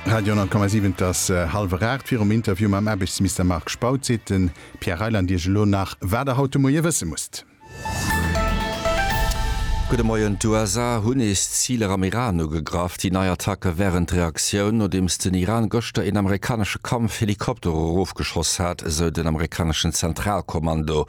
Radio 10,7 Et ass hallwer 8. Virum Interview mam Aarbechtsmister Marc Spautz seet de Pierre Reyland Iech elo nach, wat Der haut de Moie wësse musst. Gudde Moien, D'USA hunn nees Ziler am Iran ugegraff. Déi nei Attacke wären d'Reaktioun, nodeems den Iran gëschter een amerikanesche Kampfhelikopter erofgeschoss hat, esou den amerikaneschen Zentralkommando.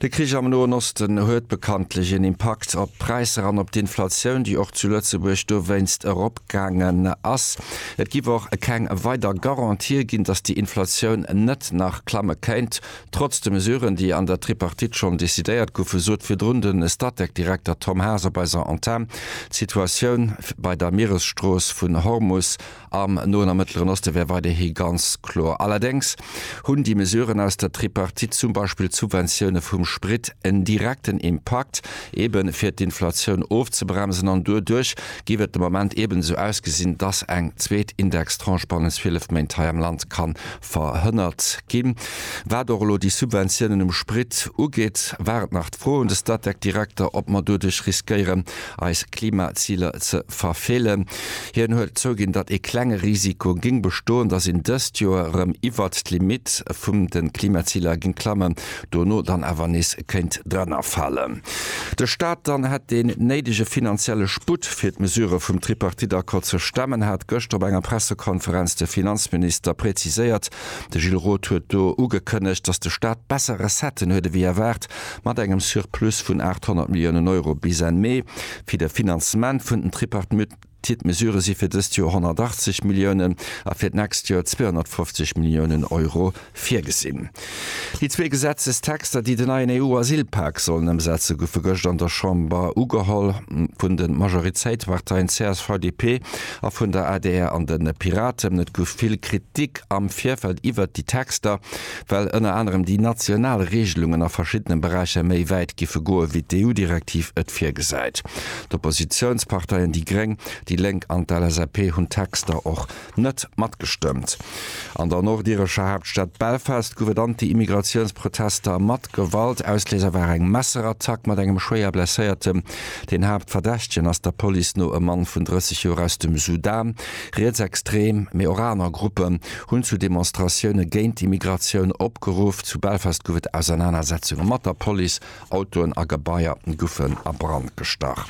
De Krich am Noen Osten huet bekanntlech een Impakt op d'Präisser an op d'Inflatioun, déi och zu Lëtzebuerg dowéinst eropgaangen ass. Et giff och keng weider Garantië ginn, datt déi Inflatioun net nach klamme kéint, trotz de Mesuren, déi an der Tripartite schonn decidéiert goufen, sot virdrun de Statec-Direkter Tom Haas op eiser Antenn. D'Situatioun bei der Mieresstrooss vun Hormus Am Noen a Mëttleren Oste wär weiderhi ganz kloer. Allerdéngs hunn déi Mesuren aus der Tripartite, zum Beispill d'Subventioune vum Sprit, en direkten Impakt, eebe fir d'Inflatioun ofzebremsen. An doduerch géif et de Moment eeben esou ausgesinn, dass eng zweet Indextranche bannent 12 Méint hei am Land ka verhënnert ginn. Wat och elo déi Subventiounen um Sprit ugeet, war et nach d'Fro un de Statec-Direkter, ob mer doduerch riskéieren, eis Klimaziler ze verfeelen. Hien huet zouginn, datt ee klenge Risiko géing bestoen, datt een dëst Joer erëm iwwert d'Limitt vum de Klimaziler géing klammen, dono dann awer nees kéint drannerfalen, de Staat dann hätt deen néidege finanzielle Sputt, fir d'Mesurë vum Tripartite-Accord ze stemmen, hat gëschter op enger Pressekonferenz de Finanzminister präziséiert. De Gilles Roth huet do ugekënnegt, datt de Staat besser Recetten huet ewéi erwaart, mat engem Surplus vun 800 Milliounen Euro bis Enn Mee fir de Finanzement vun den Tripartite. D'Tied Mesure si fir dëst Joer 180 Milliounen a fir d'nächst Joer 250 Milliounen Euro virgesinn. Déi zwee Gesetzestexter, déi den neien EU-Asylpak sollen ëmsetze goufe gëscht an der Chamber ugeholl. Vun de Majoritéitsparteien csv, DP a vun der adr an de Piraten. Et gouf vill Kritik am Virfeld iwwert déi Texter, well ënner anerem déi national Reegelungen a verschiddene Beräicher méi wäit giffe goe wéi d'EU-Direktiv et virgesäit. D'Oppositiounsparteien déi gréng, déi lénk an d'LSAP hunn d'Texter och net matgestëmmt. An der nordirescher Haaptstad Belfast gouf et Anti-Immigratiounsprotester mat Gewalt. Ausléiser war eng Messerattack mat engem schwéier Blesséiertem. Den Haaptverdächtegen ass der Police no e Mann vun 30 Joer aus dem Sudan. Rietsextrem, mee och aner Gruppen hunn zu Demonstratioune géint d'Immigratioun opgeruff. Zu Belfast gouf et Ausernanersetzunge mat der Police. Autoen a Gebaier goufen a Brand gestach.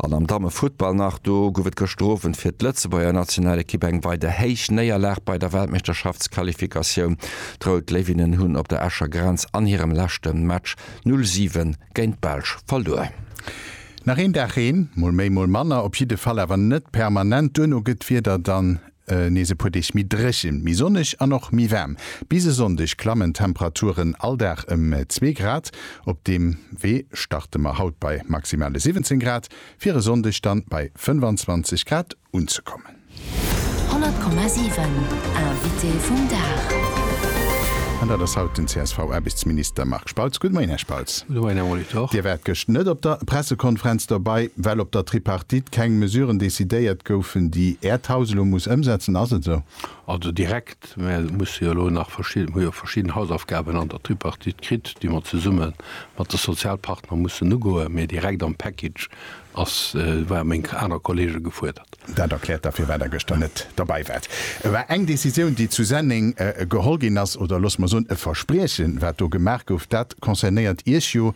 An am Dammefuttball nach, do gouf et gëschter Owend fir d'Lëtzebuerger Nationalekipp eng weider héich Néierlag bei der Weltmeeschterschaftsqualifikatioun. D'Rout Léiwinnen hunn op der Escher Grenz an hirem leschte Match 0 7 géint d'Belsch verluer. Nach een Dag Reen, mol méi mol manner, op jidde Fall awer net permanent. Duerno gëtt d'Wieder dann Nees e puer Deeg méi dréchen, méi sonneg an och méi waarm. Bis e Sonndeg klammen d'Temperaturen all Dag ëm zwee Grad. Op deem Wee starte mer haut bei maximale 17 Grad, fir e Sonndeg dann bei 25 Grad unzekommen. 100,7 Invité vum Dag. An dat ass haut den CSV-Aarbechtsminister Marc. Spautz, Gud Moien Här Spautz. Gud Moien Här Molitor. Dir waart gëscht net op der Pressekonferenz dobei, well op der Tripartite keng Mesuren decidéiert goufen, déi Äert Haus elo muss ëmsetzen, ass et esou? Also direkt, mä et musse jo elo nach verschidden, hu jo verschidden Hausaufgaben an der Tripartite kritt, déi mer zesumme mat de Sozialpartner mussen ugoen, mä direkt am Package Ass war meng aner Kollege gefuerdert. Dat erkläert da firwat der gëschter net derbei waart. E war eng Décisioun déi zu Senneng geholl ginn ass, oder looss mer soen e Verspriechen wat do gemaach gouf, dat concernéiert Iech jo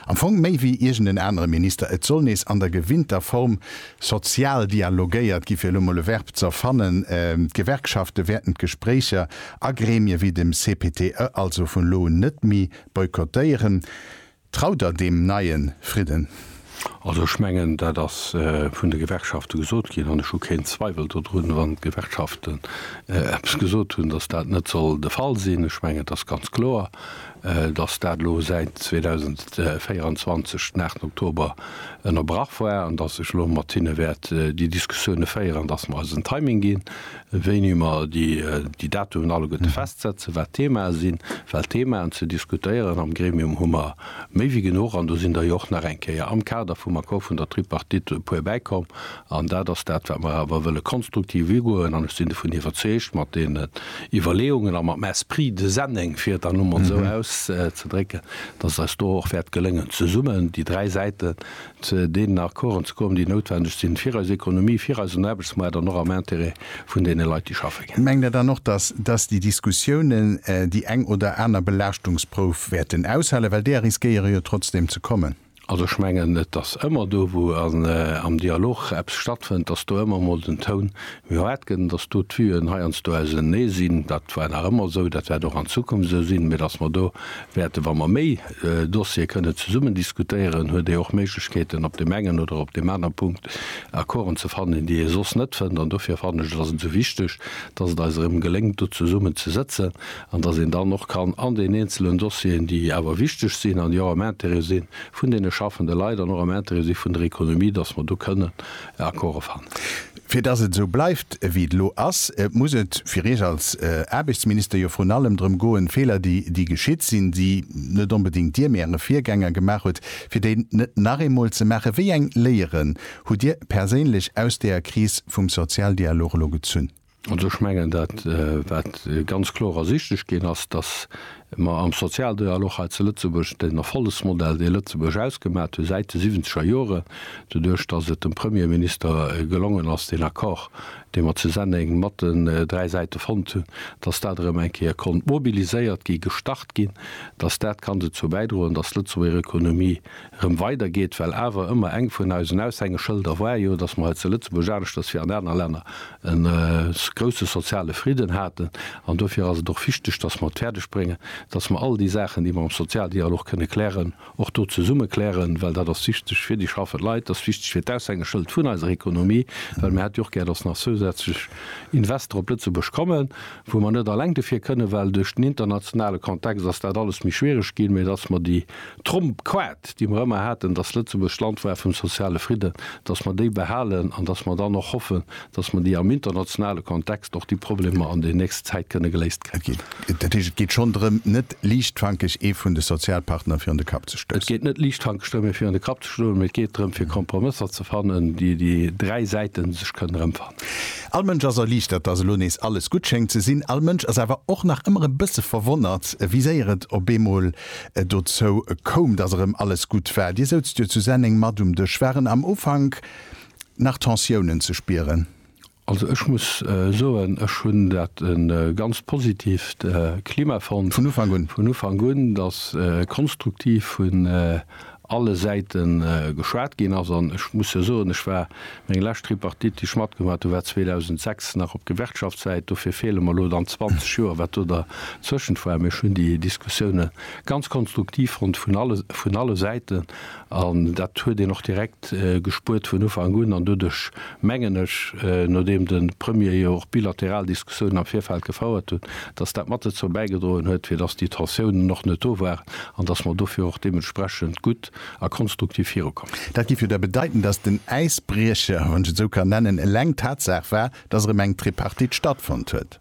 am Fong méi wéi iergend en anere Minister. Et soll nees an der gewinnter Form sozial dialogéiert gi, fir elo mol e Verb ze erfannen. D'Gewerkschafte wäerten d'Gespréicher a Gremie wéi dem CPTE also vun elo un net méi boykottéieren. Traut der deem neie Fridden? Also ech mengen, dat ass vun de Gewerkschafte gesot ginn, an ech hu keen Zweiwel dodrun, wann d'Gewerkschaften eppes gesot hunn, datt dat net soll de Fall sinn. Ech mengen, et ass ganz kloer, datt dat elo säit 2024 den 8 Oktober ënnerbrach war an datt ech elo mat hinne wäert déi Diskussioune féieren, datt mer eis en Timing ginn. wéini mer déi Datumen alleguerte festsetzen, wat d'Themae sinn, well d'Themaen ze diskutéieren am Gremium hu mer méi wéi genuch. An do sinn der jo och nach eng Kéier am Kader vum Accord vun der Tripartite e puer bäikomm. An dat ass dat, wat mer awer wëlle konstruktiv ugoen. An ech sinn dovun iwwerzeegt, mat deene Iwwerleeungen a matem Esprit de Senneng, fir et dann elo mol esou auszedrécken, dass et eis do och wäert gelëngen, zesummen déi dräi Säiten zu deenen Accorden ze kommen, déi noutwendeg sinn fir eis Ekonomie, fir eisen Aarbechtsmaart an och am Intérêt vun deene Leit, déi schaffe ginn. Mengt Der dann och, dass dass déi Diskussiounen déi eng oder aner Belaaschtungsprouf wäerten aushalen, well deer riskéiere jo trotzdem ze kommen? Also ech mengen, et ass ëmmer do, wou am Dialog eppes stattfënnt, dass do ëmmer emol den Toun méi haart gëtt an dass do d'Vue'en heiansdo ausenee sinn. Dat war nach ëmmer esou, dat wäert och an Zukunft esou sinn, mä dass mer do wäerten, wa mer méi Dossier kënne zesummen diskutéieren, huet ee och Méiglechkeeten op deem engen oder op deem anere Punkt Accorden ze fannen, déi ee soss net fënnt. An dofir fannen ech et ass ëmsou wichteg, datt et eis erëm geléngt do zesummen ze sëtzen an datt een dann och kann an den eenzelen Dossieren, déi awer wichteg sinn an déi och am Intérêt si vun deene schaffende Leit an och am Intérêt si vun der Économie, datt mer do kënnen Accorde fannen. Fir dass et esou bleift, wéi et elo ass, muss et fir Iech als Aarbechtsminister jo vrun allem drëm goen, Feeler, déi geschitt sinn, déi net onbedéngt Dir, mee Äre Virgänger gemaach hutt, fir déi net nach eemol ze maachen. Wéi eng Léieren hutt Dir perséinlech aus deeër Kris vum Sozialdialog elo gezunn? Also ech mengen, dat, wat ganz kloer ersichtlech ginn ass, dass Mä am Sozialdialog hei zu Lëtzebuerg, den Erfollegsmodell, dee Lëtzebuerg ausgemat huet säit de siwwenzeger Joren, doduerch datt et dem Premierminister gelongen ass, deen Accord, dee mer zu Senneng mat den dräi Säite fonnt hunn, datt dat erëm eng Kéier konnt mobiliséiert gi, gestart ginn, datt dat kann dozou bäidroen, datt d'Lëtzebuerger Ekonomie rëm weider geet, well awer ëmmer eng vun eisen Aushängeschëlder war jo, dass mer hei zu Lëtzebuerg, aneschters wéi an aner Länner, e grousse soziale Fridden haten. An dofir ass et och wichteg, dass mer et fäerdeg bréngen, dass mer all déi Saachen, déi mer am Sozialdialog kënne klären, och do zesumme klären, well dat ass wichteg fir déi schaffend Leit, dat ass wichteg fir d'Aushängeschëld vun eiser Ekonomie, well mir hätte jo och gär, dass nach zousätzlech Investor op Lëtzebuerg kommen, wou mer net alleng dofir kënnen, well duerch den internationale Kontext ass dat alles méi schwierig ginn, mä dass mer déi. D'Tromp-Quat, déi mer ëmmer haten, dass Lëtzebuerg d'Land war vum soziale Fridden, dass mer déi behalen an dass mer dann och hoffen, dass mer déi am internationale Kontext och déi Problemer an der nächster Zäit kënne geléist kréien. Okee. Dat heescht, et geet schonn drëm, net liichtfankeg ee vun de Sozialpartner virun de Kapp ze stoussen. Et geet net liichtfankeg drëm, ee virun de Kapp ze stoen, mee et geet drëm, fir Kompromësser ze fannen, déi déi dräi Säite sech kënnen erëmfannen. All Mënsch ass erliichtert, dass elo nees alles gutt schéngt ze sinn. All Mënsch ass awer och nach ëmmer e bësse verwonnert, wéi séier et op eemol dozou koum, dass erëm alles gutt war. Dir soutzt jo zu Senneng mat um Dësch. Waren am Ufank nach Tensiounen ze spieren? Also ech muss soen, ech hunn dat e ganz positivt Klima fonnt. Vun Ufank un? Vun Ufank un, dass konstruktiv vun alle Säite geschwat ginn ass. An ech muss jo soen, ech war, meng lescht Tripartite, déi ech matgemaach hunn, war 2006, nach op Gewerkschaftssäit. Dofir feele mer elo dann 20 Joer, wat do dertëschent war. Mee ech hunn déi Diskussioune ganz konstruktiv fonnt vun alle, vun alle Säiten. An dat huet een och direkt gespuert vun Ufank un. An doduerch mengen ech, nodeem de Premier jo och bilateral Diskussiounen am Virfeld gefouert huet, dass dat mat dozou bäigedroen huet, fir dass déi Tensiounen och net do waren an dass mer dofir och deementsprechend gutt a konstruktiv virukomm sinn. Dat géif jo da bedeiten, dass den Äisbriecher, wann ech et esou kann nennen, eleng d'Tatsaach war, dass erëm eng Tripartite stattfonnt huet.